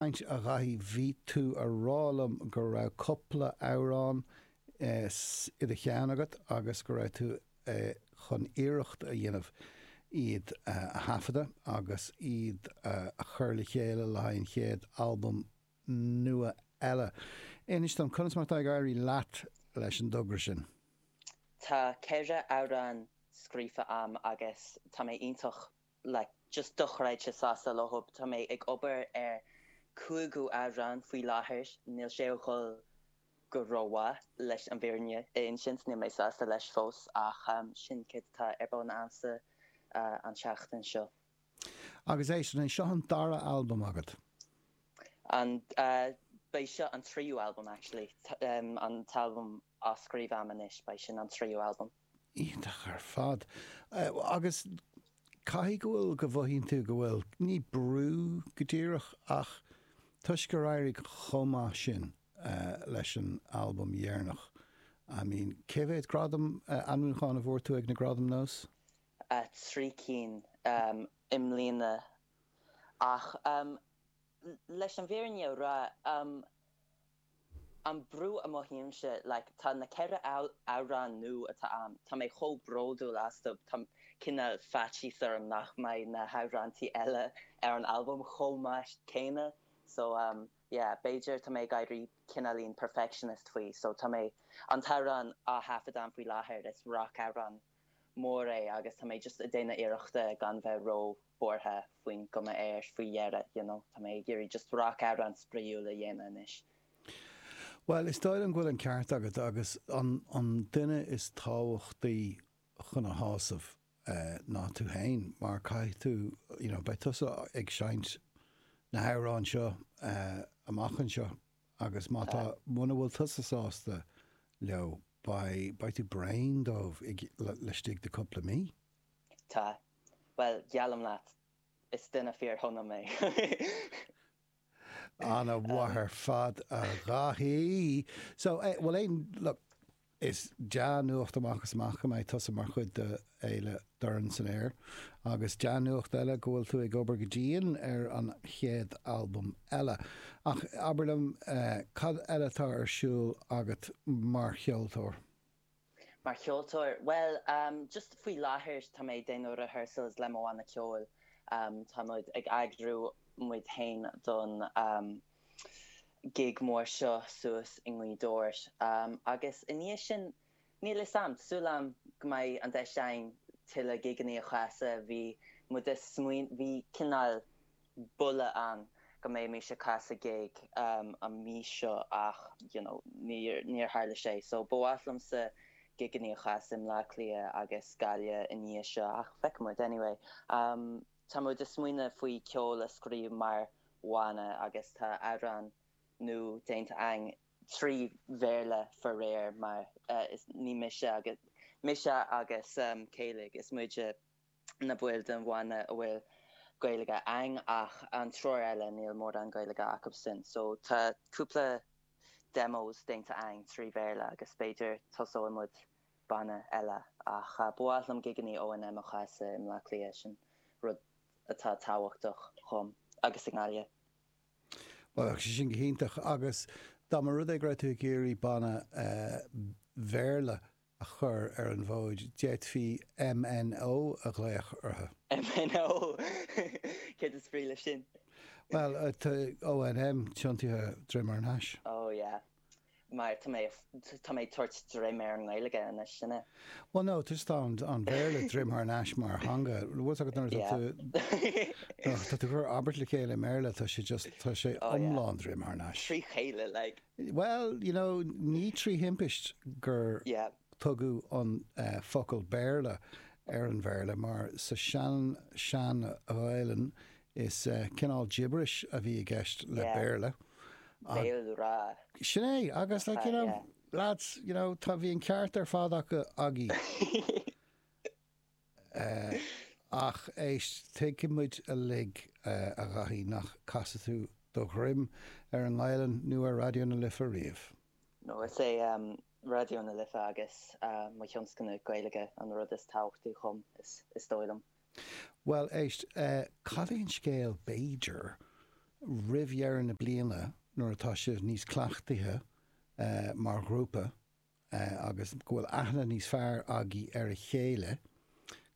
Caint, A Dhaithí, bhí tú a rá liom go raibh cúpla amhrán i do cheann agat agus go raibh tú chun iarracht a dhéanamh iad a thaifeadadh agus iad a chur le chéile le haghaidh an chéad albam nua eile. Inis dom, conas mar atá ag éirí leat leis an dtogra sin? Tá ceithre amhrán scríofa a'm agus tá mé iontach like just dochreidte sásta leo. Tá mé ag obair ar cúigiú amhrán faoi láthair. Níl sé a dhul go rómhaith, leis an bhfírinne a insint. Níl mé sásta leis fós, ach sin céard atá ar bun agamsa an tseachtain seo. Agus é sin, an seo an dara albam agat? An, beidh seo an tríú albam actually, an t-albam á scríobh a'm anois. Beidh sin an tríú albam. Iontach ar fad. Agus caithfidh go bhfuil, go mothaíonn tú go bhfuil, ní brú go díreach ach toisc gur éirigh chomh maith sin leis an albam dheireanach, I mean, cé mhéad gradam ainmniúchán a fuair tú ag na Gradaim Nós? Trí cinn i mbliana. Ach leis an bhfírinne a rá, an brú a mothaímse like tá na ceithre amhrán nua atá a'm tá mé chomh bródúil astu tá cineál faitíos orm nach mbeidh na hamhráintí eile ar an albam chomh maith céanna so um yeah b'fhéidir tá mé ag éirí cineáilín perfectionist faoi so tá mé an t-amhrán á thaifeadadh a'm faoi láthair is rac amhrán mór é agus tá mé just a' déanamh iarrachta gan bheith ró buartha faoin gcuma air faoi dheireadh you know tá mé ag iarraidh just rac amhrán spraoiúil a dhéanamh anois. Bhuel, is dóigh liom go bhfuil an ceart agat agus an duine is tábhachtaí chun a shásamh eh ná tú fhéin mar caithfidh tú you know beidh tusa ag seinnt na hamhráin seo eh amach anseo Agus má tá, muna bhfuil tusa sásta leo, beidh, beidh tú bréan díobh laistigh de cúpla mí. Tá. Bhuel, geallaim leat, is duine fíor-shona mé. Ana mhaith ar fad, a Dhaithí. So, bhuel, aon, look, Is dea-nuacht amach is amach go mbeidh tusa mar chuid de Fhéile Dorn san Aer, agus dea-nuacht eile go bhfuil tú ag obair go dian ar an chéad albam eile. Ach abair liom, cad eile atá ar siúl agat mar cheoltóir? Mar cheoltóir? Bhuel, just faoi láthair tá mé ag déanamh rehearsals le mo bhanna ceoil. Táimid ag eagrú muid féin don. gig mór seo suas i nGaoth Dobhair. Agus i ndiaidh sin, níl 'fhios a'm, tá súil a'm go mbeidh an deis a'inn tuilleadh gigeanna a chasadh. Bhí muid ag smaoineamh, bhí cineál buille a'm go mbeimís ag casadh gig an mhí seo ach, you know, níor, níor tharla sé. So, ba mhaith liomsa gigeanna a chasadh i mBleá Cliath agus Gaillimh i ndiaidh seo ach feicfidh muid. Anyway. Tá muid ag smaoineamh faoi ceol a scríobh mar bhanna agus tá amhrán nua déanta againn, trí Bhéarla faraor, mar is mise agus mise agus Kayleigh is muid na baill den bhanna a bhfuil Gaeilge againn ach an triúr eile níl mórán Gaeilge acubhsan so tá cúpla demos déanta againn trí Bhéarla agus b'fhéidir tosóidh muid banna eile ach ba mhaith liom gigeannaí O&M a chasadh i mBleá Cliath, sin rud atá tábhachtach dhom, agus i nGaillimh. Bheadh sé sin go hiontach. Agus dá mba rud é go raibh tú ag iarraidh banna Béarla a chur ar an bhfód, d'fhéadfaí MNO a ghlaoch orthu. MNO! Céard is brí leis sin? Bhuel, tá O&M tiontaithe droim thar ais. Oh yeah. mar tá mé tá mé ag tabhairt droim ar an nGaeilge anois sin é. Bhuel no tá just an an Béarla droim thar ais mar theanga bhfuil 's agat nuair atá tú nuair atá tú ag cur abairt le chéile i mBéarla tá sé just tá sé iomlán droim thar ais. Trí chéile like. Bhuel you know ní trí thimpist gur Tugadh an focal Béarla ar an Bhéarla mar sa sean sean-Ghaelainn is cineál gibberish a bhí i gceist le Béarla. Béalghrá. Sin é, agus like you know, lads, you know, tá, bhí an ceart ar fad acu. Ach éist, tuigfidh muid uilig a Dhaithí nach gcasfadh tú do dhroim ar an nGaelainn nó ar Raidió na Life riamh. No, is é Raidió na Life agus mo thionscnamh Gaeilge an rud is tábhachtaí dhom, is dóigh liom. Bhuel, éist, cad é an scéal, b'fhéidir, roimh dheireadh na bliana, nuair atá sibh níos cleachtaithe mar ghrúpa agus go bhfuil aithne níos fearr agaibh ar a chéile,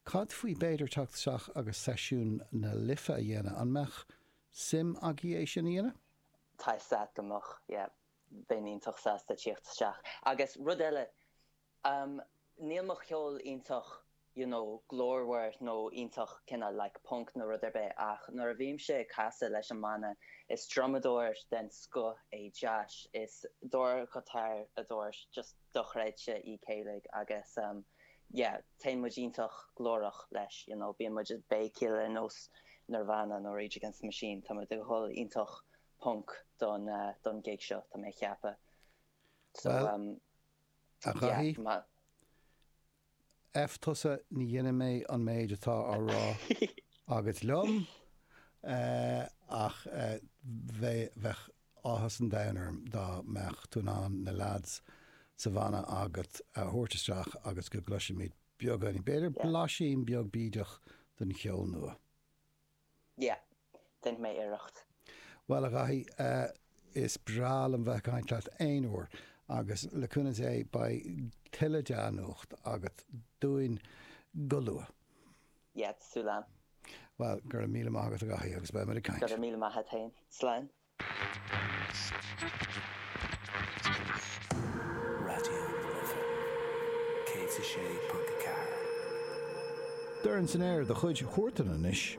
cad faoi b'fhéidir teacht isteach agus seisiún na Life a dhéanamh, an mbeadh suim agaibh é sin a dhéanamh? Tá a fhios agat go mbeadh, yeah. Bheinn iontach sásta tíocht isteach. Agus rud eile, níl mo cheol iontach you know glórmhar nó iontach cineál like punk nó rud ar bith ach nuair a bhímse ag casadh leis an mbanna, is drumadóir den scoth é Josh, is dordghiotáradóir just dochreidte í Kayleigh agus yeah, téann muid iontach glórach leis you know, bíonn muid ag béicíl ar nós Nirvana nó Rage Against the Machine, tá muid ag dhul iontach ponc don gig seo, tá mé a cheapadh. So, Bhuel, um, a Dhaithí, yeah, ma. F tusa, ní dhéanfaidh mé an méid atá á rá agat liom, eh, ach eh, bheadh, bheadh áthas an domhain orm dá mbeadh tú in ann na leaids sa bhanna agat a thabhairt isteach agus go gcloisfimid beagán, b'fhéidir, Yeah. blaisín beag bídeach den cheol nua. Yeah. Déanfaidh mé iarracht. Bhuel, a Dhaithí, is breá liom bheith ag caint leat aon uair, agus le cúnamh Dé, beidh tuilleadh dea-nuacht agat dúinn go luath. Yeah, sula. Bhuel, go raibh míle maith agat, a Dhaithí, agus beidh muid ag caint. Go raibh míle maith a't fhéin. Slán. Raidió na Life 106.4. Dorn san aer de chuid Huartan anois.